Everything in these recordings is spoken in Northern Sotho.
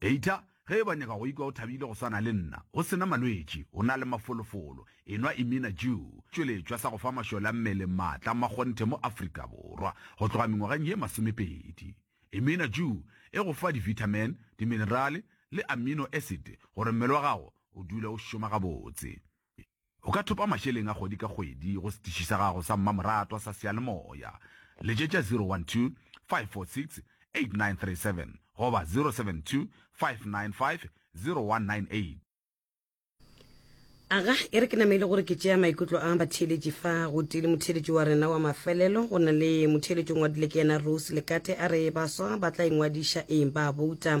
Eita ge eba nyaka go ikwa o thabile go swana le nna, go se na malwetši, o na le mafolofolo, enwa Imina Jew, tšweletšwa sa go fa mašole a mmele maatla a makgonthe mo Afrika Borwa go tloga mengwageng ye masomepedi. Imina Jew e go fa divitamin, diminerale le amino acid gore mmele wa gago o dule o šoma gabotse. O ka thopa mašeleng a kgwedi ka kgwedi go setiši sa gago sa mmamoratwa sa seyalemoya. Letšetša 012 546 8937 goba 072 595 0198. Aga e re ke nameile gore ke tšea maikutlo a batheeletši fa gotee le motheeletši wa rena wa mafelelo go na le motheeletši o ngwadile ke yena Rose Lekate a re baswa ba tla ingwadiša eng ba bouta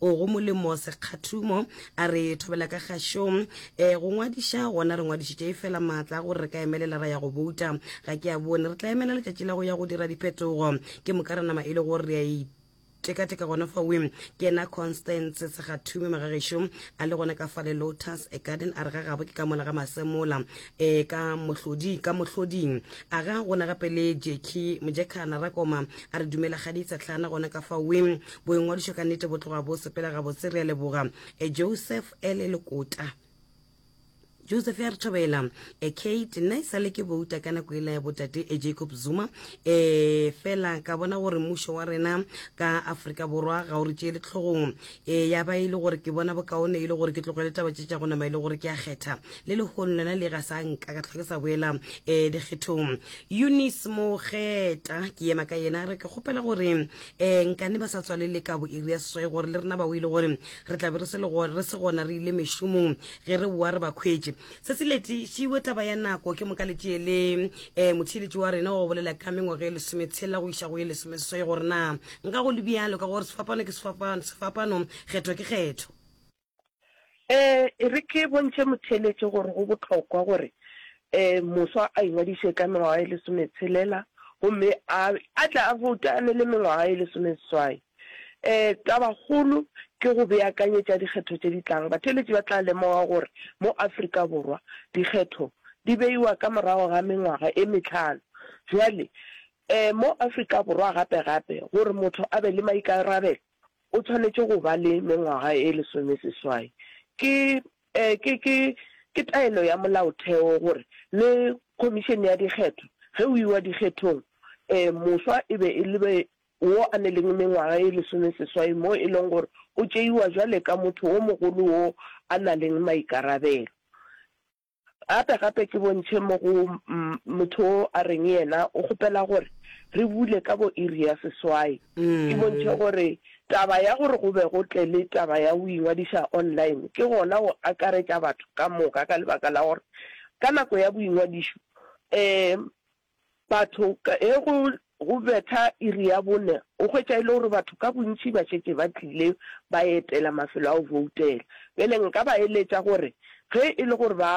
o go molemo sekgathumo a re thobela ka gašo um eh, go ngwadiša gona re ngwadišitše e fela maatla a gore re ka emelela ra ya go bouta ga ke a bone re tla emela letšatši la go ya go dira diphetogo ke moka re nama e le gore re a e teka-teka gona fa wim ke ena constance segathume magagešo a le gona ka fa le lotus a garden a re ga gabo ke ka mola ga masemola um ka mohlodi ka mohloding a ga gona gape le jeki mojekana rakoma a re dumela ga di itsatlhana gona ka fa wim Boingwadišo ka nnete bo tloga bo sepela gabotse. Re a leboga eh, Joseph Ele Lekota. joseph ya re thobela e kate nna e sale ke bouta ka nako ela ya botate e jacob zuma e fela ka bona gore mmušo wa rena ka aforika borwa ga o re tšeele tlhogong e ya ba e le gore ke bona bokaone e le gore ke tlogele taba tše tša go nama e le gore ke a kgetha le lehono lena le ga sa nka ka tlhoke sa boela um dikgethong eunice mogeta ke ema ka yena re ke kgopela gore um nkane ba sa tswalele kabo iri ya seswai gore le rena ba o ile gore re tlabe re se le gore re se gona re ile mešomong ge re boa re ba khwetše se se leti šiwe taba ya nako ke moka letše le um motheeletši wa rena wa go bolela ka mengwaga e lesometshela go iša go ye lesomeseswai gore na nka go le bjalo ka gore sefapano ke sefapano kgetho ke kgetho Ee, e re ke bontšhe motheeletši gore go bohlokwa gore um moswa a ingwadiše ka mengwaga e lesometshelela gomme a a tle a boute a ne le mengwaga e lesomeseswai. Um tabakgolo ke go beakanyetša dikgetho tše di tlang. Batheeletši ba tla lemoga gore mo Afrika Borwa dikgetho di beiwa ka morago ga mengwaga e mehlano. Bjale, um mo Afrika Borwa gape-gape gore motho a be le maikarabelo O tshwanetše go ba le mengwaga e lesomeseswai. Ke, ke, ke, ke taelo ya Molaotheo gore le Khomišene ya Dikgetho, ge o iwa dikgethong, e, moswa e be e le wo a ne leng mengwaga e lesomeseswai mo e leng gore o tšeiwa bjale ka motho wo mogolo wo a na leng maikarabelo. Gape, gape ke bontšhe mo go motho wo a reng yena o kgopela gore re bule ka bo iri ya seswai. Ke bontšhe gore taba ya gore go be go tle le taba ya go ingwadiša online ke gona go akaretša batho ka moka ka lebaka la gore ka nako ya boingwadišo um batho ge go go betha iri ya bone o hwetša e le gore batho ka bontši ba šetše ba tlile ba etela mafelo a go voutela. Bjale nka ba eletša gore ge e le gore ba